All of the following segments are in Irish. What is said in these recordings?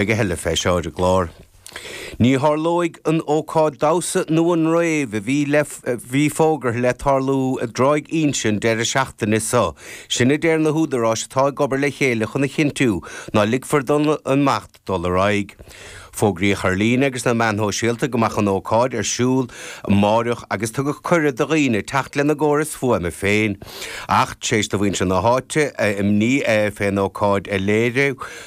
Príomhscéalta an Deiscirt. Ní tharlóidh an ócáid damhsa nó an réabh a bhí le, bhí fógartha le tarlú i dTráigh Ínse an deireadh seachtaine so, sin a deir na húdaráis atá ag obair le chéile chun a chinntiú ná ligfear don imeacht dul ar aghaidh. Fógraíodh ar líne agus sna meáin shóisialta go mbeadh an ócáid ar siúl amáireach agus tugadh cuireadh do dhaoine teacht lena gcóras fuaime féin ach tar éis do mhuintir na háite imní fén ócáid a léiriú,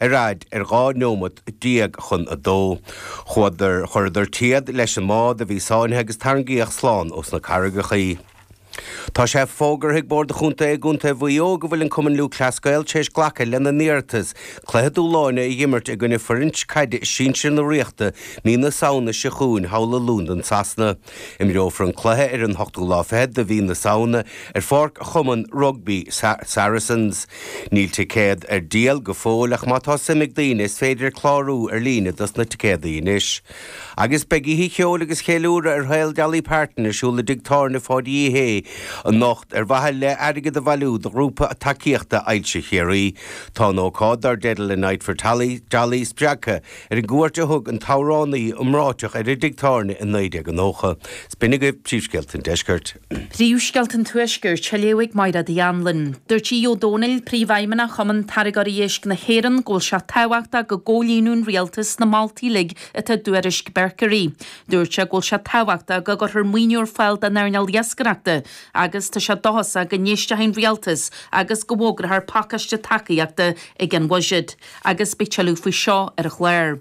Ar aghaidh ar dhá neomat déag chun a dó, chuadar, chuireadar téad leis an mbád a bhí sáinnithe agus tarraingíodh slán ós na carraigeacha í. Tá sé fógartha ag Bord an Chontae i gContae Mhaigh Eo go bhfuil an Cumann Lúthchleas Gael tar éis glacadh lena n-iarratas cluiche dúshláine a dh'imirt i gcoinne foireann caide sinsir na Ríochta mí na Samhna seo chugainn thall i Londain Shasana. Imreofar an cluiche ar an hochtú lá fichead de mhí na Samhna ar pháirc Chumann Rugbaí Saracens. Níl ticéad ar díol go fóill ach má tá suim ag daoine is féidir clárú ar líne dos na ticéadaí anois. Agus beidh oíche cheoil agus cheiliúrtha ar shaol Dolly Parton ar siúl i dtigh tábhairne Pháidí Uí Shé anocht ar mhaithe le airgead a bhailiú do ghrúpa tacaíochta ailse Chiarraí. Tá an ócáid, dár teideal A Night for Dolly, spreagtha ar an gcuairt a thug an t-amhránaí iomráiteach ar an dtigh tábhairne i 1990, sin agaibh Príomhscéalta an Deiscirt. Príomhscéalta an Tuaiscirt, á léamh ag Máire D. Anluain. Dúirt Aodh Ó Domhnaill, Príomhfheidhmeannach Chumann Táirgeoirí Éisc na hÉireann, go bhfuil sé tábhachtach go gcomhlíonann an Rialtas na moltaí uilig atá i dtuairisc Mercury. Dúirt sé go bhfuil sé tábhachtach go gcuirfear maoiniú ar fáil don earnáil iascaireachta agus tá sé dóchasach go n-éistfidh an Rialtas agus go bhfógrafar pacáiste tacaíochta ag an bhuiséad. agus beidh tuilleadh faoi seo ar an chlár.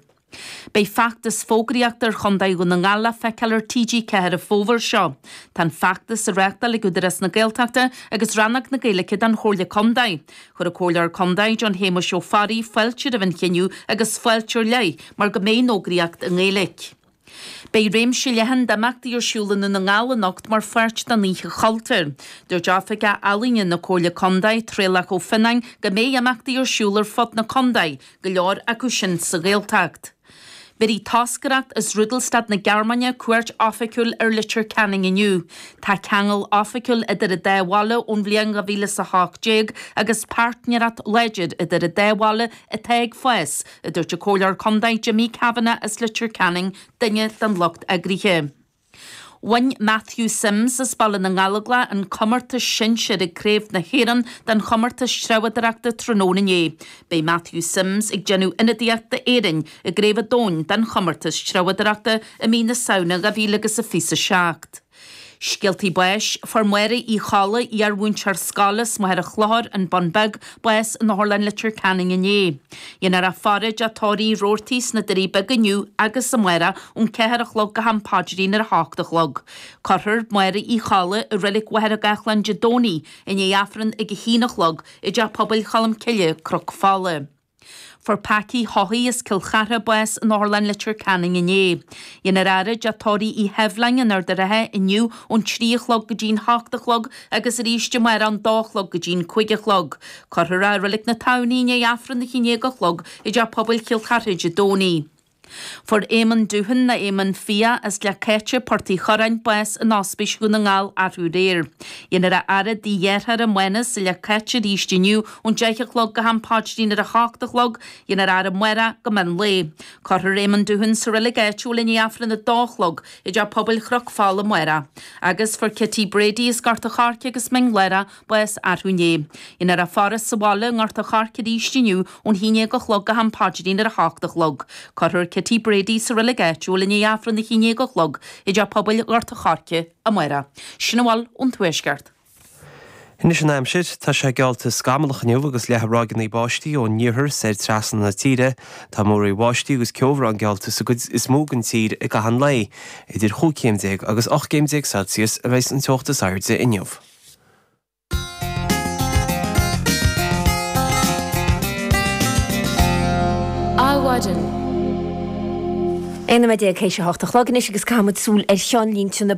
Beidh feachtas fógraíochta ar chontae Dhún na nGall le feiceáil ar TG4 an fómhar seo. Tá an feachtas á reáchtáil ag Údarás na Gaeltachta agus Rannóg na Gaeilge den Chomhairle Contae. Chuir an Comhairleoir Contae, John Shéamuis Ó Fearraigh fáilte roimh an chinneadh agus fáilte ar leith mar go mbeidh an fhógraíocht i nGaeilge. Beidh réimse leathan d'imeachtaí ar siúl i nDún na nGall anocht mar pháirt den Oíche Chultúir. Dúirt Oifigeach Ealaíne na Comhairle Contae, Traolach Ó Fionnáin, go mbeidh imeachtaí ar siúl ar fud na contae, go leor acu sin sa Ghaeltacht. Bhéarfaidh toscaireacht as Rudolstadt na Gearmáine cuairt oifigiúil ar Leitir Ceanainn inniu. Tá ceangal oifigiúil idir an dá bhaile ón bhliain 2018 agus páirtnéireacht láidir idir an dá bhaile atá ag fás, a dúirt an Comhairleoir Contae Jimmy Kavanagh as Leitir Ceanainn, duine den lucht eagraithe. Bhain Matthew Simms as Baile na nGallóglach an comórtas sinsir ag Craobh na hÉireann den chomórtas treabhadóireachta tráthnóna inné. Beidh Matthew Simms ag déanamh ionadaíocht d'Éirinn i gCraobh an Domhain den chomórtas treabhadóireachta i mí na Samhna 2000 agus a fiche seacht. Scéaltaí Báis, Fuair Máire Uí Cholla, iar-mhúinteoir scoile as Machaire Chlochair, An Bun Beag, bás in Otharlann Leitir Ceanainn inné. Déanfar a faire i dTeach Tórraimh Roarty sna Doirí Beaga inniu agus amárach ón ceathair a chlog go ham paidrín ar a hocht a chlog. Cuirfear Máire Uí Cholla i Reilig Mhachaire Gathlán Dé Domhnaigh i ndiaidh Aifreann a haon a chlog i dTeach Pobail Cholmcille, Cnoc Fola. Fuair Packy Haughey as Cill Chartha bás in Otharlann Leitir Ceanainn inné. Déanfar a fhaire i dTeach Tórraimh Uí Sheibhleáin in Ard an Rátha inniu ón trí a chlog go dtí'n hocht a chlog agus arís amárach ón dó a chlog go dtí'n cúig a chlog. Cuirfear é i Reilig na Tamhnaí i ndiaidh Aifreann a haon déag a chlog i dTeach Pobail Chill Chartha Dé Domhnaigh. Fuair Éamonn Doohan, nó Éamonn Fia, as Leac Caoite, Port Uí Churráin, bás in Ospís Dhún na nGall arú aréir. Déanfar a fhaire i dteach a dheartháir Mánas i Leac Caoite arís inniu ón deich a chlog go ham paidrín ar a hocht a chlog, déanfar a fhaire amárach go meán lae. Cuirfear Éamonn Doohan sa Reilig áitiúil i ndiaidh Aifreann a dó a chlog i dTeach Pobail Chnoc Fola amárach. Agus fuair Kitty Brady as Gort an Choirce agus Mín Lárach bás arú inné. Déanfar a faire sa bhaile i nGort an Choirce arís inniu ón haon déag a chlog go ham paidrín ar a hocht a chlog. Cuirfear Kitty Brady sa reilig áitiúil i ndiaidh Aifreann a haon déag a chlog i dTeach Pobail Ghort an Choirce amárach. Sin a bhfuil ón tuaisceart. Anois an aimsir. Tá sé geallta scamallach inniu agus leathfaidh ráigeanna báistí ón iarthar soir trasna na tíre. Tá múraíl bháistí agus ceobhrán geallta sa gcuid is mó den tír i gcaitheamh an lae, idir chúig chéim déag agus ocht gcéim déag Celsius a bheas an teocht is airde inniu. Adhmhaidin. Aon nóiméad déag théis a hocht a chlog anois agus caithfidh muid súil ar cheannlínte na.